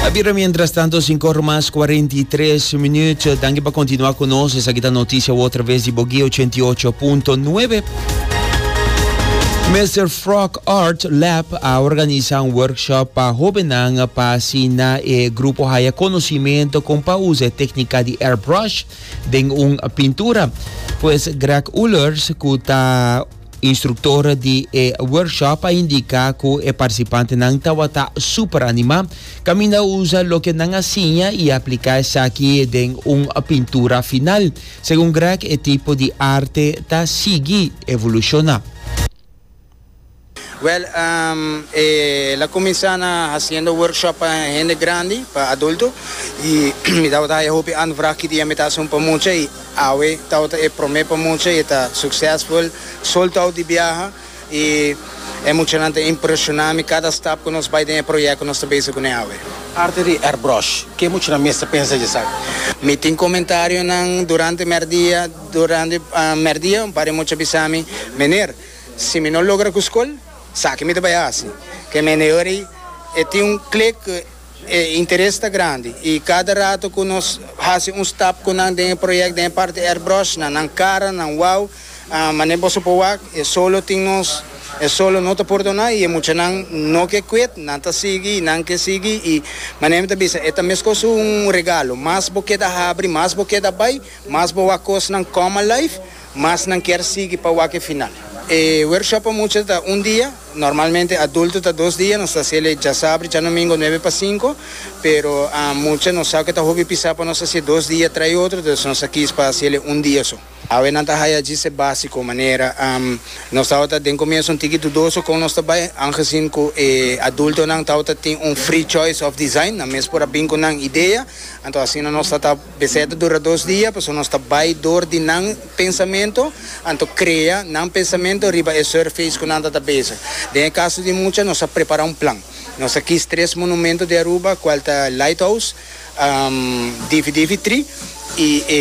A bira mientras tanto cinco ora mas cuarenta y tres minuut. Danki pa continua cu nos. Esaki ta noticia otra vez di Bogué ochenta y ocho punto nuebe. Mister Frog Art Lab a organiza un workshop pa hobennan pa asina e grupo haya conocimento con pa usa e tecnica di airbrush den un pintura. Pues Greg Ullers cu ta Instruktor di e workshop a indika ku e partisipantenan tabata super animá kaminda a usa loke nan a siña i apliká esaki den un pintura final. Segun Grech e tipo di arte ta sigui evolushona. Wèl, el a kuminsá na hasiendo workshop pa hende grandi, pa adulto, i mi tabata haya hopi anvraag ki dia mi ta hasi un pa mucha i. Awe Tao ta e prome pa mucha, e ta suksesful sol Tao di biaha i e muchanan ta impresiona mi kada stap ku nos bai den e proyek ku nos ta bezig kuné awe. Parti di Airbrush, ke muchanan mes ta pensa dje esaki? Mi tin komentarionan durante mèrdia, durante mèrdia un par di mucha bisa mi, Meneer, si mi no logra ku skol, saki mi ta bai hasi? Ke meneer ei e tin un klik ku. E interes ta grandi y cada rato cu nos haci un stap cu nan den e project den e parti airbrush na nan cara, nan wao, mane boso por wak e solo tin nos, e solo no ta por dona y e muchanan no ke quit, nan ta sigui y nan ke sigui y mane mi ta bisa e ta mescos un regalo, mas bo keda habri, mas bo keda bay, mas bo wak cosnan come alive, mas nan kier sigui pa wak e final. E workshop pa mucha ta un dia. Normalmente adulto ta dos dia, nos ta haciel e djasabri djanumingo nuebe pa sinku, pero mucha nos sa cu e ta hopi pisa pa nos haci e dos dia tray otro, entonces nos a kis pa haciel e un dia so. Awe nan ta haya djise basico manera nos tabata den comienzo un tiki dudoso con nos ta bay, angezien cu e adultonan tabata tin un free choice of design, nan mes por a bin cu nan idea, anto asina nos ta ta. Besete dura dos dia, pasobra nos ta bai dor di nan pensamentu, anto krea nan pensamentu riba e surface ku nan ta ta bezig. Den e kaso di mucha, nos a prepará un plan. Nos ta kis tres monumentu di Aruba, kual ta Lighthouse, Difi Difi Tri i e.